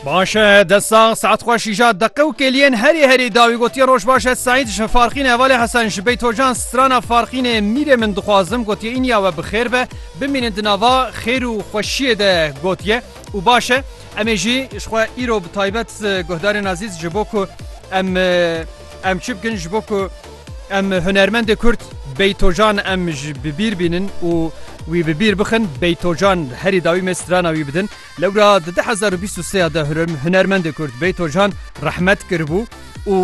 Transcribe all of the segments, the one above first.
باش e dest sax saet xwe şîja deqe û kêliyên herî herî dawî gotiye roj baş e Seîd ji Farxînê hevalê Hesen ji Beytocan strana Farxînê mîrê min dixwazim gotiye îniya we bi xêr be bimînin di nava xêr û xweşiyê de gotiye û baş e em ê jî ji xwe îro bi taybet guhdarên azîz ji bo ku em Em çi bikin ji bo ku em hunermendê Kurd Beytocan em ji bi bîr bînin û wî bi bîr bixin, Beytocan herî dawî me strana wî bidin. Lewra di du hezar û bîst û sê ya de hunermendê Kurd Beytocan rehmet kiribû û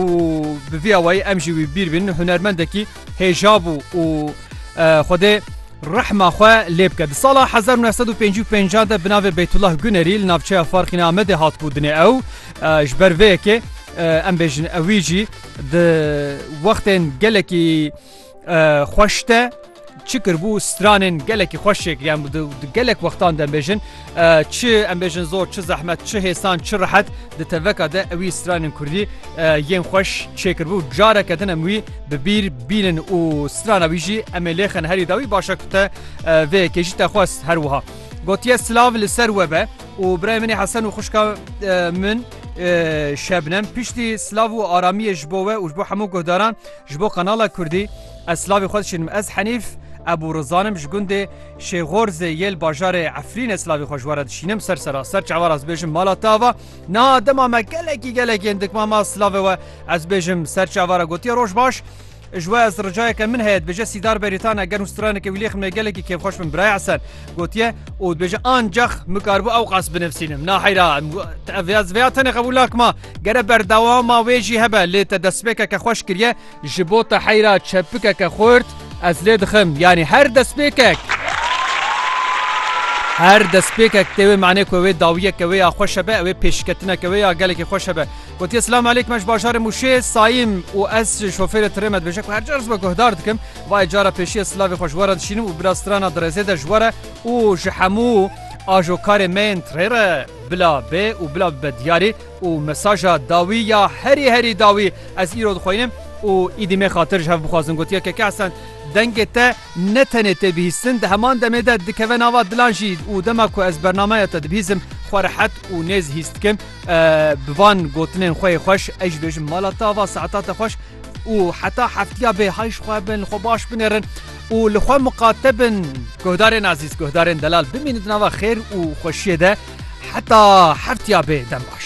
bi vî awayî em jî wî bi bîr bînin, hunermendekî hêja bû û Xwedê rehma xwe lê bike. Di sala hezar û neh sed û pêncî û pêncî de bi navê Beytullah Gunerî li navçeya Farxîna Amedê hatibû dinê ew. Ji ber vê yekê em bêjin ew wî jî di wextên gelekî xweş de çi kirbû stranên gelekî xweş çêkiriyan di gelek wextan de bêjin çi em bêjin zor çi zehmet çi hêsan çi rehet di teveka de ewî stranên Kurdî yên xweş çêkirbû careke din em wî bi bîr bînin û strana wî jî em ê lêxin herî dawî başa ku te vê kêjî te xwest her wiha gotiye silav li ser we be û birayê min ê Hesen û xwişka min Şebnem piştî silav û aramiyê ji bo we û ji bo hemû guhdaran ji bo Qenala Kurdî ez silavê xwe dişînim ez Henîf Ebû Rizanim ji gundê Şêxorzê yê li bajarê Efrînê silavê xwe ji we re dişînim ser seraser çawa ez bêjim mala te ava niha dema me gelekî gelekên dikma ma silavê we ez bêjim ser çawa re gotiye roj baş Ji we ez ricayeke min heye dibêje Sîdar Berîtane ger hûn straneke wî lêximê gelekî kêfxweş bin Birayê Esen gotiye û dibêje ancax min karibû ewqas binivîsînim naheyra ez vêya tenê qebûl nakima gere berdewama wê jî hebe lê te destpêkeke xweş kiriye ji bo te heyra çepikeke xurt ez lê dixim yanî her destpêkek her destpêkek tê wê manê ku wê dawiyeke wê ya xweş hebe ew ê pêşketineke wê ya gelekî xweş hebe Gotiye silam aleykum ez bajarê mûşê sayim û ez şofêrê tirê me dibêje ku her car zibe guhdar dikim vayê cara pêşiye silavê xwe ji were dişînim û bila strana dirêzê de ji were û ji hemû ajokarê me yên tirê re bila bê û bila bibe diyarî û mesaja dawî ya herî herî dawî ez îro dixwînim û îdî mê xatir ji hev bixwazin gotiye keke hesen dengê te ne tenê tê bihîstin di heman demê de dikeve nava dilan jî û dema ku ez bernamaya te dibihîzim xwe rehet û nêz hîs dikim Bi van gotinên xwe yê xweş ez jî bêjim mala te ava saeta te xweş û heta heftiya bê hay ji xwe bin li xwe baş binêrin û li xwe miqate bin guhdarên ezîz guhdarên delal bimînin di nava xêr û xweşiyê de heta heftiya bê dem baş.